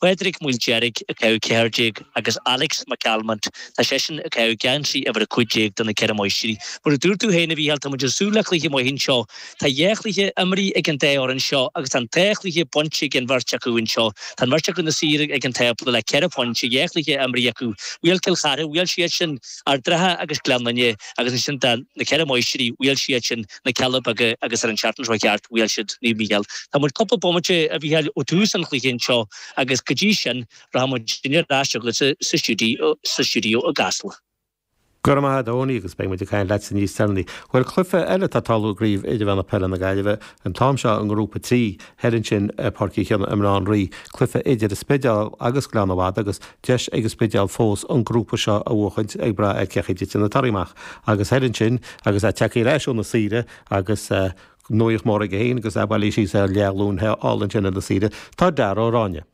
Pádraig Ó Maoildeirg ag caitheamh 14 agus Alex McCalmont, tá seisean ag caitheamh geansaí uimhir 15 do na Ceithre Máistrí. Mar a dúirt tú féin a Mhícheáil tá muid ag súil le cluiche maith anseo. Tá dhá chluiche imeartha ag an dá fhoireann seo agus tá an dá chluiche bainte ag an bheirt acu anseo. Tá an bheirt acu ina suí ag an tábla le ceithre phointe, dhá chluiche imeartha acu. Bhuail Cill Chartha, bhuail siad sin Ard an Rátha agus Gleann Fhinne agus ansin tá na Ceithre Máistrí, bhuail siad sin. na Cealla Beaga agus ar an tseachtain seo a chuaigh thart, bhuail siad Naomh Mícheál. Tá muid cúpla bomaite, a Mhícheáil, ó tús an chluiche anseo agus go dtí sin rachaidh muidinne ar ais chugatsa sa stiúideo, sa stiúideo i gCasla. Go raibh maith agat a Eoiní agus beidh muid ag caint leatsa níos deireanaí. Bhuel cluiche eile atá ag tarlú i gCraobh Idirmheánach Peile na Gaillimhe, an t-am seo i nGrúpa 3, thoir ansin i bPáirc Uí Chionnaith i mBaile Átha an Rí, cluiche idir an Spidéal agus Gleann na Madadh agus, deis ag an Spidéal fós an grúpa seo a bhuachaint ag brath ar cén chaoi a dtiteann na torthaí amach agus thoir ansin agus é tagtha ar ais ó na saoire agus nuaíocht mór aige féin agus é bailithe síos ar leathghlúin thall ansin ar na saoire. Tá Dara Ó Ráinne.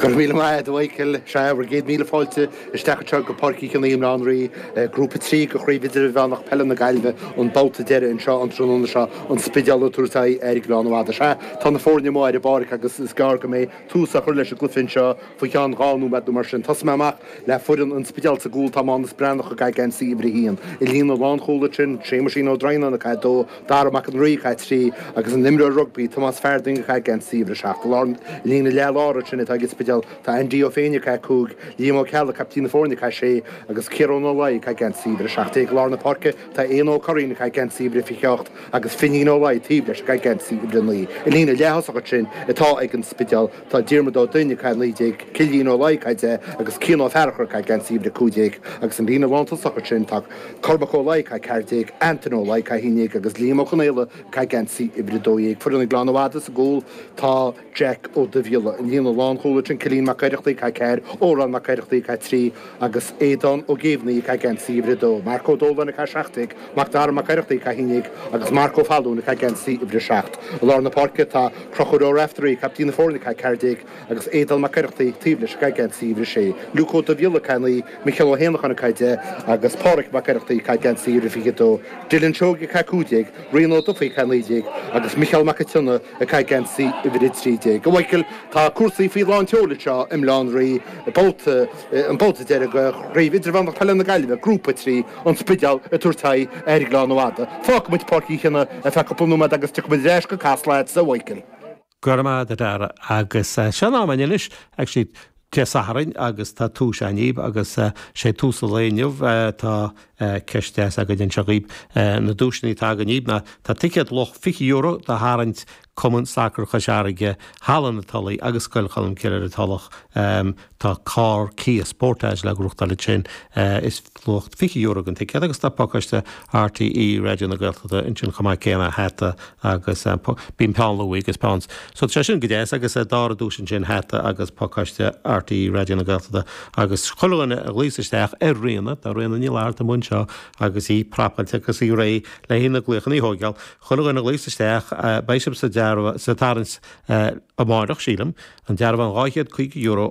Go raibh míle maith a'd a Mhichíl, sea bhur gcéad míle fáilte isteach anseo go Páirc Uí Chionnaith i mBaile Átha an Rí, Grúpa 3 de Chraobh Idirmheánach Peile na Gaillimhe, an babhta deireadh anseo an tráthnóna seo, an Spidéal ag tabhairt aghaidh ar Ghleann na Madadh. Sea, tá na foirne amuigh ar an bpáirc agus is gearr go mbeidh tús á chur leis an gcluiche anseo faoi cheann dhá nóiméad nó mar sin. Tosóidh mé amach le foireann an Spidéil sa gcúl, tá Mánus Breathnach ag caitheamh geansaí uimhir a haon, i líne lánchúil ansin, Séamuisín Ó Droighneáin ag caitheamh a dó, Dara Mac an Rí ag caitheamh a trí, agus an t-imreoir rugbaí, Tomás Farthing ag caitheamh geansaí uimhir a seacht. I líne leathláir ansin atá ag an Spidéal tá Aindí Ó Féinneadha ag caitheamh a cúig, Liam Ó Ceallaigh, caiptín na foirne ag caitheamh a sé, agus Ciarán Ó Laoi ag caitheamh geansaí uimhir a seacht déag. I lár na páirce tá Éanna Ó Curraoin ag caitheamh geansaí uimhir a fiche ocht, Agus Finín Ó Laidhe taobh leis ag agm C i mbrionnaí, i líne leath thosach ansin atá ag an Spideál, tá Diarmuid Ó Duinn ag a 19, Cillian Ó Laidhe ag a 10 agus Cian Ó Fearachair ag agm C uimhir 15. Agus an líne lán tosach ansin tá Cormac Ó Laidhe ag a 14, Antaine Ó Laidhe ag a 11 agus Liam Ó Conaola ag agm C uimhir 12. Foireann ag leánn i bhfad is i gcúl tá. Jack Ó Duibhghiolla, an líne lánchúil ansin, Cillian Mac Oireachtaigh, ag caitheamh 4, Odhrán Mac Oireachtaigh, ag caitheamh 3, agus Aodán Ó Géibheannaigh, ag caitheamh geansaí uimhir 2, Mark Ó Dóláin, ag caitheamh 17, Mac Dara Mac Oireachtaigh, ag caitheamh 11, agus Mark Ó Fallúin, ag caitheamh geansaí uimhir 7. I lár na páirce tá Conchúr Ó Raiftearaí, captaen na foirne, ag caitheamh 14, agus Aodán Mac Oireachtaigh taobh leis, ag caitheamh geansaí uimhir 6, Luke Ó Duibhghiolla, ag caitheamh 9, Micheál Ó hÉanacháin, ag caitheamh 10, agus Pádraig Mac Oireachtaigh, ag caitheamh geansaí uimhir 22, Dylan Seoige, ag caitheamh 15, Rian Ó Dufaigh, ag caitheamh 19, agus Micheál Mac an tSionnaigh, Ag caitheamh geansaí uimhir a trí déag a Mhichíl tá cúrsaí faoi lán tseoil anseo i mBaile Átha an Rí, babhta, an babhta deireadh de Chraobh Idirmheánach Peile na Gaillimhe, Grúpa 3, An Spidéal ag tabhairt aghaidh ar Ghleann na Madadh. Fágfaidh muid Páirc Uí Chionnaith ar feadh cúpla nóiméad agus tiocfaidh muid ar ais go Casla chugatsa a Mhichíl. Go raibh maith agat, a Dara, agus seo an am, an inis, actually, Dé Sathairn agus tá tomhas againn dhaoibh agus sé tomhas an lae inniu tá ceist deas againn anseo dhaoib. Na duaiseanna atá againn dhaoib ná, tá ticéad luach €20 do tharraingt Cumann Sacar Chois Fharraige, Halla na Tulaí agus Scoil Cholmcille ar an Tulach. Tá carr Kia Sportage le gnóthachtáil ansin. Is. luach €20 an ticéad agus tá pacáiste RTÉ Raidió na Gaeltachta ansin chomh maith céanna, hata agus bíonn peann luaidhe agus peann so tá sé sin go deas agus dara duais ansin hata agus pacáiste RTÉ Raidió na Gaeltachta agus chuile dhuine a ghlaos isteach ar Ríona, tá Ríona Ní Fhlatharta amuigh anseo agus í prapáilte agus í réidh le haghaidh na glaochannaí a thóigeáil, chuile dhuine a ghlaos isteach beidh sibh sa dearbhán sa tarraingt amárach sílim, an dearbhán €250 ó.